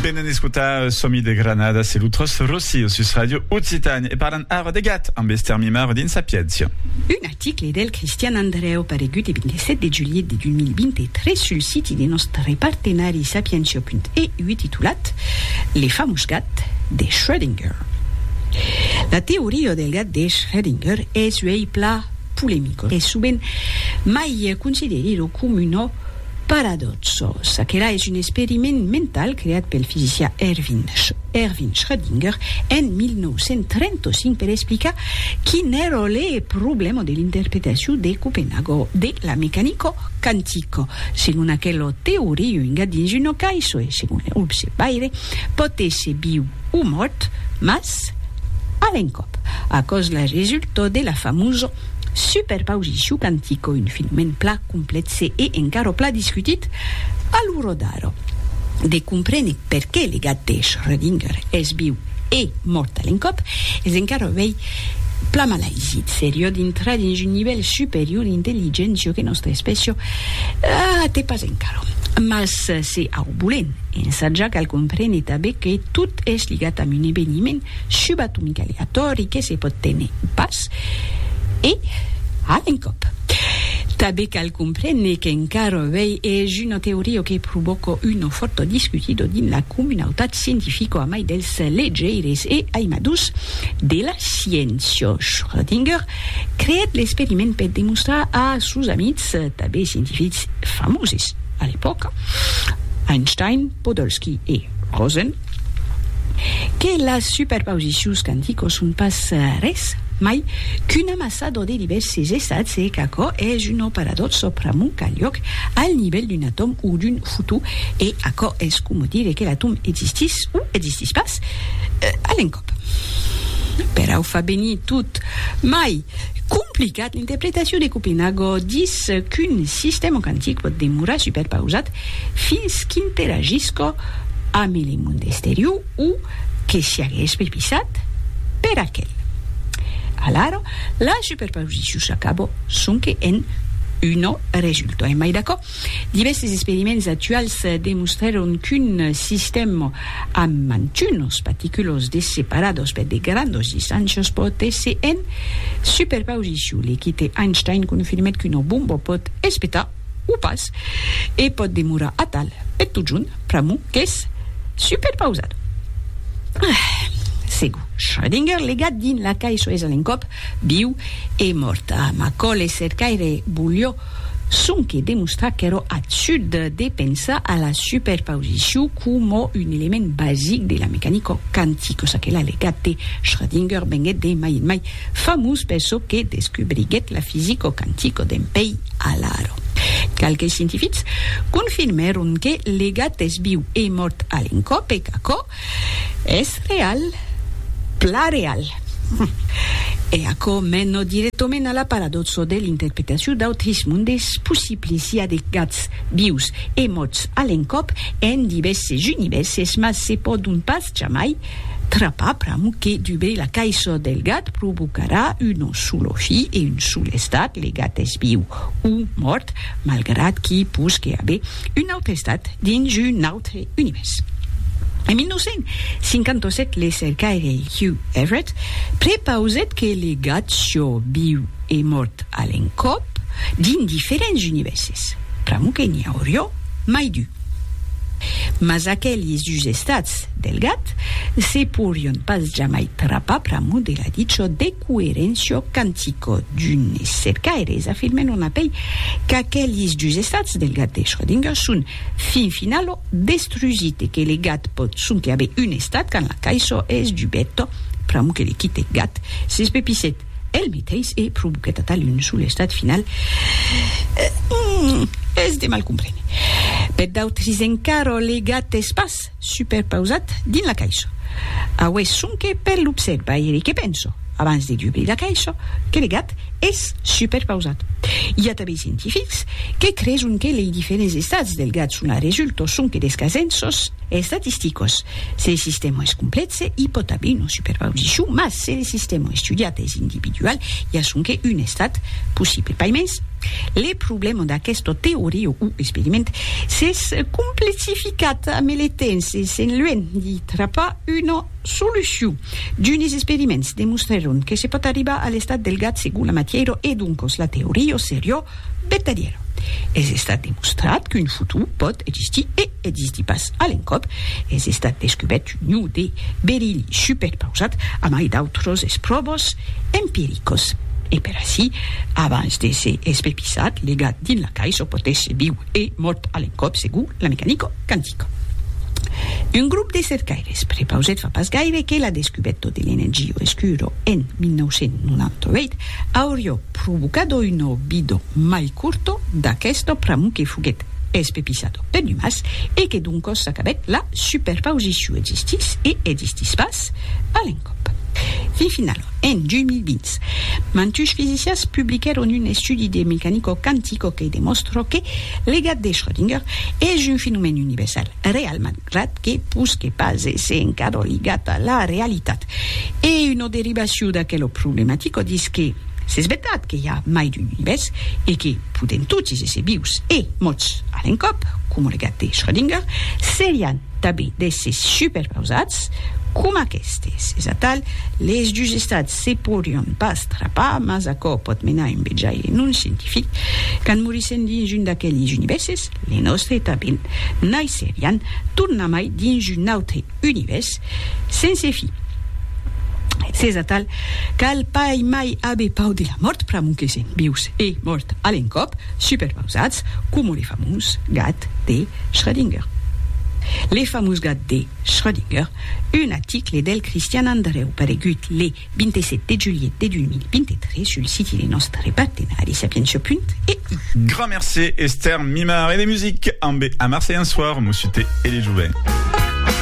Venen escotar Somi de Granada, se lo tros Rossi o sus Radio Occitània e parlan ara de gat amb Esther Mimaro dins Sapiéncia. Un article del Cristian Andrèu paregut e 27 de julhet de 2023 sul siti de nòstre partenari sapientia.eu titulat Le famós gat de Schrödinger. La teoria del gat de Schrödinger es uèi plan polemica e sovent mai considerida coma una Paradòxos, aquela es un experiment mental creat pel fisicià Erwin Erwin Schrödinger en 1935 per explicar quin èra le problèma de l'interpretacion de Copenhago de la mecanica quantica. Segon aquela teoria, un gat dins una caissa e, segon le observaire, pòt èsser viu o mòrt, mas a l'encòp, aquò's la resulta de la famosa Super pausicu cantico un filament pla complètse e encara pla discutit a lo rodar de comprene perqué le gat de Schrödinger es viu e mort a l'encòp es encara uèi pla malaisit seriò dintrar dins un nivèl superior d'intelligéncia que nòstra espècia a te pas encara mas se au bolen ensatjar cal comprene tabé que tot es ligat amb un eveniment subatomicaleatòri que se pòt tene pas E, a l'encòp. Tanben cal comprene qu'encara avèi es una teoria que provòca una fòrta discutida dins la comunautat scientifica a mai dels legeires e aimadors de la sciéncia. Schrödinger creèt l'experiment per demostrar a sos amics, tanben scientifics famoses a l'epòca, Einstein, Podolsky e Rosen, que las superposicions quanticos son pas res mai qu'un amassador de divèrses estats e qu'aquò es un operador sòpramont qu'a liòc al nivèl d'un atòm o d'un fotó e aquò es coma dire que l'atòm existís o existís pas a l'encòp. Perau fa venir tot mai complicat, l'interpretacion de Copenhago dis qu'un sistèma quantic pòt demorar superpausat fins qu'interagisca ame le monde esterior o que siagues bepisat per aquel. Alara, la superpausicion s'acaba sonque en una resulta. Emai d'aquò, divèstes experiments actuals demostrèron qu'un sistèm amb mantunas paticulas de separadas per de grandas distàncias pòt èsser en superpausicion. L'equite Einstein confirmèt qu'una bomba pòt espetar o pas, e pòt demorar atal e totjorn pr'amor qu'es superpausat. Ah! Segur, Schrödinger legat dins la cai soes a l'encòp, viu e mòrt. Ah, Macaulay cercaire volió sonque demostrar qu'èra absurd de pensar a la superpausicion coma un element basic de la mecanica quantica, çaquelà legat de Schrödinger venguèt de mai en mai Famós per çò que descubriguèt la fisico quantico d'en Pei Alaro. Qualques scientifics confirmèron que le gat es viu e mòrt a l'encòp e qu'aquò es real, plan real. E aquò mena dirèctament a la paradòxa de l'interpretacion d'autres mondes possiblis, i a de gats vius e mòrts a l'encòp en divèrses univèrses, mas se pòdon pas jamai Trapar pram que dubei la caisò del gat provocarà un solo fi e un sol estat, le gat es viu o mòrt, malgrat qu'i posque aver un autre estat dins un autre univèrs. En 1957, le cercaire Hugh Everett prepausèt que le gat sió viu e mòrt a l'encòp dins diferents univèrses, pr'amor que n'i aurió mai d'un. Mas aquelis dus estats Del gat, se porion pas jamai trapar pr'amor de la dicho de coerencio cantico d'unes cercaires afirmen on apei qu'aquelis dus estats del gat de Schrödinger son fin finalo destrusit e que le gat pòt sonque aver un estat quand la caisò es dubeta pr'amor que le quite gat s'espepissèt el meteis e provoquèt atal un sol estat final es de mal comprene per d'autres encara le gat es pas superpausat dins la caisha. Aué sonque per l'observairi que penso, abans de dubrir la caisha, que le gat es superpausat. I a tanben scientifics que creson que lei diferents estats del gat son a resulto sonque des casenços estatisticos. Se le sistèma es complètze, i pòt aver una superpausicion, mas se le sistèma estudiat es individual, i a sonque un estat possible. Paimens, le problèma d'aquesta teoria o experiment s'es complexificat. Quat militents de Sent Luèn li trapar una solucion. D'unes experiments demostrèron que se pòt arribar a l'estat del gat segon la matièra e doncas la teoria seriá vertadièra. Es estat demostrat qu'un futur pòt existir e existir pas a l'encòp. Es estat descubèrt un ion de berili superpausat a mai d'autras espròvas empiricas. E per aicí, abans d'èsser espepissat, legat dins la caissa, pòt èsser viu. E mot a l'encòp segur la mecanico quantica. Un grop de cercaires prepausèt fa pas gaire que la descubèto de l'energio escuro en 1998 aurió provocado un olvido mai curto d'aquesto pramo que foguèt espepissado per l'umàs e que doncos s'acabèt la superpausiciu existís e existís pas a l'encòp. Fin finalament. En 2020, mantush fisicians publiquèron un estudi de mecanico quantico que demòstra que l'gat de Schrödinger es un fenomèn universal, real malgrat que pus que pas èsser encara ligat a la realitat. E una derivacion d'aquela problematica dis que s'es vertat que i a mai d'un univèrs e que podèm totis èsser vius e mòrts a l'encòp, coma le gat de Schrödinger, serián Tabi d'èsses superpausats coma aquestes. Es atal, les dus estats se porion pas trapar, mas aquò pòt menar un bejaire non scientific, quand morissèn dins un d'aqueles univèrses, le nòstre tanben, naisserián tornamai dins un autre univèrs sense fi. S'es atal, cal pas mai aver pau de la mòrt pr'amor que sèm vius e mòrt a l'encòp. Superpausatz coma le famós gat de Schrödinger. Le famós gat de Schrödinger, un aticle del Cristian Andreu paregut le 27 de julhet de 2023 sul siti de nòstre partenari sapientia.eu. Grand mercé Esther Mimar e de music ambe Amar Seian Soir, Mossuté e le Joven.